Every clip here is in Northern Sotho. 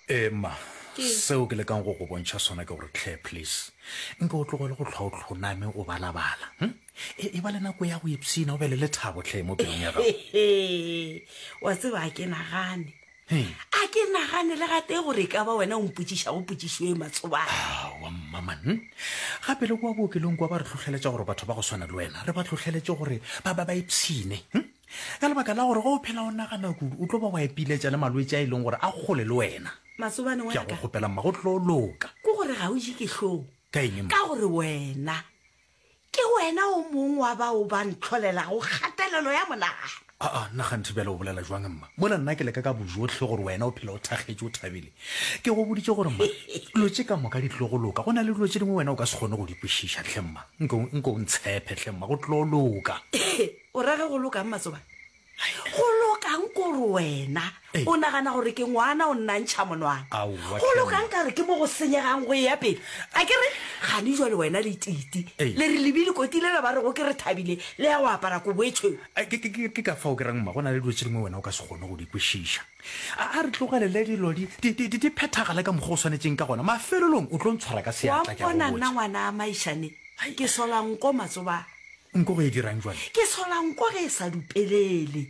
Ee, mma. Ke. Seo ke lekang go go bontšha sona ke gore, Claire, please, nke o tlogele go hlwa o hloname o balabala. Hm? E, e ba le nako ya go ipshina o be le lethabo, Claire, mo pelong ya gago. Hehe. Wa tseba a ke nagane. He. A ke nagane le gate gore e ka ba wena o mpotsiša go potsišo e matsobane. Awa, mma man. Gape le kwa bookelong kwa ba re tlhohleletša gore batho ba go swana le wena re ba tlhohleletše gore ba ba ba ipshine. Hm? Ka lebaka la gore ge o phela o nagana kudu, o tlo ba wa ipiletša le malwetši a e leng gore a kgole le wena. Masobane wa ka. Ke a go kgopela mma, go tlo loka. Ke gore ga o je ke hlong. Ka eng mma? Ka gore wena ke wena o mong wa bao ba ntlholelago kgatelelo ya monagano. Aa, nna kganthe bjale o bolela jwang mma? Mola nna ke leka ka bojohle gore wena o phela o thakgetše o thabile. Ke go boditše gore mma, dilo tše ka moka di tlo go loka. Go na le dilo tše dingwe wena o ka se kgone go di kwešiša hle mma. Nko, nko o ntshephe hle mma, go tlo loka. O ra ge go lokang Matsobane? Go lokang kore wena o nagana gore ke ngwana o nnantšha monwana? Go lokang ka re ke mo go senyegang go eya pele? A ke re gane jwa le wena le titi le re lebi le kotile le ba re go ke re thabile le ya go apara kobo e tshweu. Ke ka fao ke rang mma go na le dilo tse dingwe wena o ka se kgone go di kwešiša. A re tlogelele dilo di phethagale ka mokgwa o swanetšeng ka gona mafelelong o tlo ntshwara ka seatla ke a go botša. Wa mpona nna ngwana a Maišane ke sola nko Matsobane. Nko go e dirang jwale? Ke sola nko ge e sa dupelele.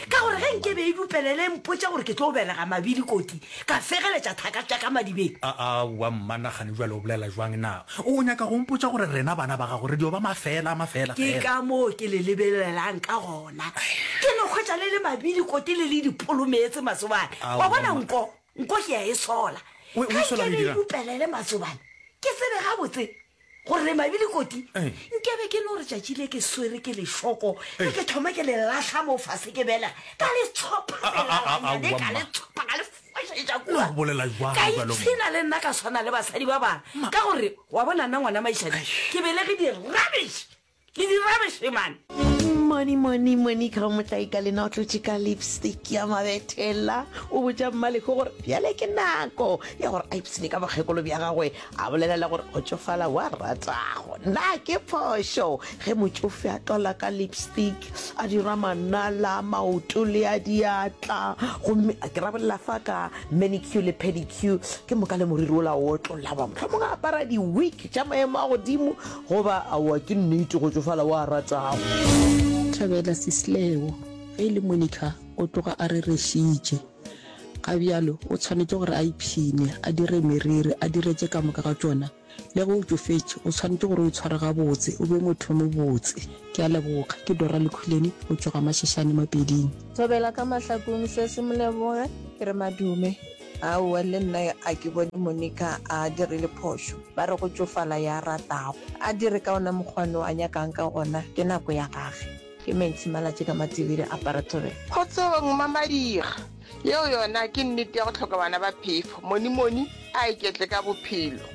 Ka gore ge nke be e dupelele e mpotša gore ke tlo belega mabili koti, ka fegeletša thaka tša ka madibeng. A, a, wa mmanagane jwale o bolela jwang na? O nyaka go mpotša gore rena bana ba gago re dio ba mafeela a mafeela feela? Ke ka moo ke le lebelelang ka gona. Ke no hwetša le le mabili koti le le dipolo meetse masobane. Wa bona nko, nko ke ya e sola. Ge nke be e dupelele masobane, ke tsebe gabotse gore mabile koti nkebe ke no re tšatši le ke swere ke lešoko le ke thoma ke le lahla mo fase ke bela ka le tshophaelanyane ka le tshopha ka le fošetša kua ka itshina le nna ka swana le basadi ba bana ka gore wa bona nna ngwana maišane ke belege di-rubbish Ke di rubbish man. Money, money, money ka motlae ka lena o tlotše ka lipstick ya mabethela o botša mmalego gore bjale ke nako ya gore a ipsene ka bokgekolo bja gagwe a bolela le gore go tšofala wa ratago na ke phošo ge motšofe a tlola ka lipstick a dira manala maoto le a diatla gomme a ke rabolela fa ka manicure le pedicure ke moka le moriri ola o tlola ba mohlomong a apara di-week tša maemo a godimo Goba, Aowa, ke nnete, go tšofala o a ratago. Thabela Sislewo, ge e le Monica, o tloga a rerešitše. Ga bjalo, o tshwanetše gore a ipshine, a dire meriri, a dire tše ka moka ga tšona. Le ge o tšofetše, o tshwanetše gore o itshware gabotse, o be motho yo mobotse. Ke a leboga. Ke Dora Lukhuleni, go tšwa Gamašešane Mapeding. Thobela ka mahlakong sesi moleboge ke re madume. Aowa, le nna a ke bone Monica a dirile phošo. Ba re go tšofala ya ratago. A dire ka ona mokgwano a nyakang ka gona, ke nako ya gage. Ke Maxi Malatji ka Matibiri a Parathoreng. Kgotsong, Mma Madiga. Yeo yona ke nnete ya go hloka bana ba phefo. Monimoni a iketle ka bophelo.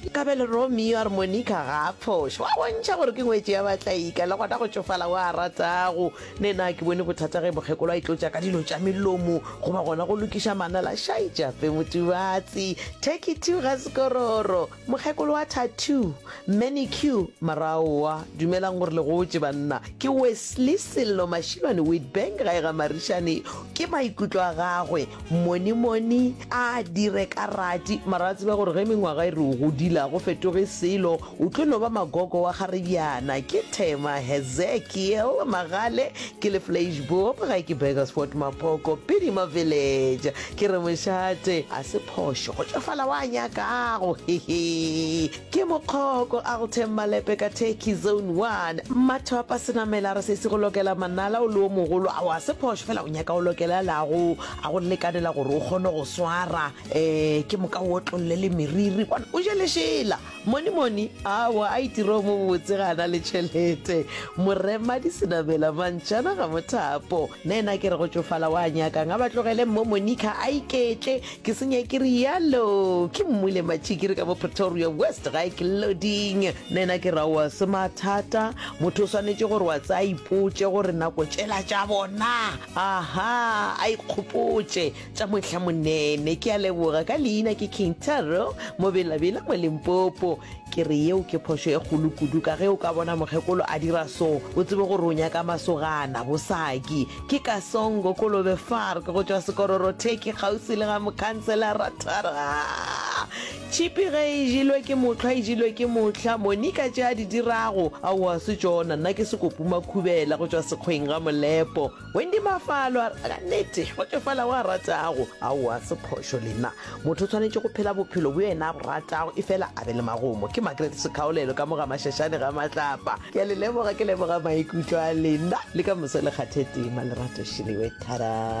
Nkabe le Romeo a re Monica ga a phošo, wa bontšha gore ke ngwetši ya batlaika, le gona go tšofala o a ratago. Ne na ke bone bothata ge mokgekolo a itlotša ka dilo tša melomo goba gona go lokiša manala? Šaetša fe Motubatsi, Turkey two ga sekororo, mokgekolo wa tattoo, manicure, mara aowa, dumelang gore le gotše banna. Ke Wesley Sello Mashilwane Witbank gae ga Marišane. Ke maikutlo a gagwe, monimoni a dire ka rati mara a tsebe gore ge mengwaga e re o godile a go fetoge selo, o tlo no ba magogo wa kgaribjana. Ke Thema Hezekiel Magale, ke le Fleischboop gae ke Burgersfort Mapoko, Pidima Village. Ke re mošate a se phošo go tšofala wa nyakago, hehe. Ke Mokgoko Altem Malepe ka Turkey Zone One. Mmathwapa senamela a re sesi go lokela manala o le o mogolo ao a se phošo fela o nyaka o lokela la go a go lekanela gore o kgone go swara um ke moka o otlolle le meriri bona o je lešela. Monimoni aowa a itire o mobotse ga a na le tšhelete. Moremadi senamela mantšana ga mothapo na ena ke re go tšofala wa nyakang a ba tlogele mmo Monica a iketle Ke senye ke rialo, ke mmule matšhi ke re ka mo Pretoria West ga e ke loading. Nena ke ra oa se mathata, motho o swanetše gore wa tsaya ipotše gore nako tšela tša bona. Aha, a ikgopotše tša mohla monene. Ke a leboga, ka leina ke King Taro mo Bela Bela mo Limpopo. Ke re yeo ke phošo e kgolo kudu ka ge o ka bona mokgekolo a dira so, o tsebe gore o nyaka masogana, bosaki. Ke Kasongo Kolobe Farg go tšwa Sekororotheki kgauswi le ga Mokhanselara Tharaa. Tšhipi ge e jelwe ke mohlwa e jelwe ke mohla, Monika tše a di dirago aowa se tšona, nna ke Sekopumakhubela go tšwa Sekgweng ga Molepo. Wendy Mafalo a re, Ka nete, go tsofala o a ratago. Aowa, se phošo le nna. Motho o tshwanetše go phela bophelo bjo yena a bo ratago, efela a be le magomo. Ke Margaret Sekhaolelo ka mo ga Mashashane ga Matlapa. Ke a le leboga, ke leboga maikutlo a lena. Le ka moso le kgathe tema, Lerato Šelewe. Thadaa!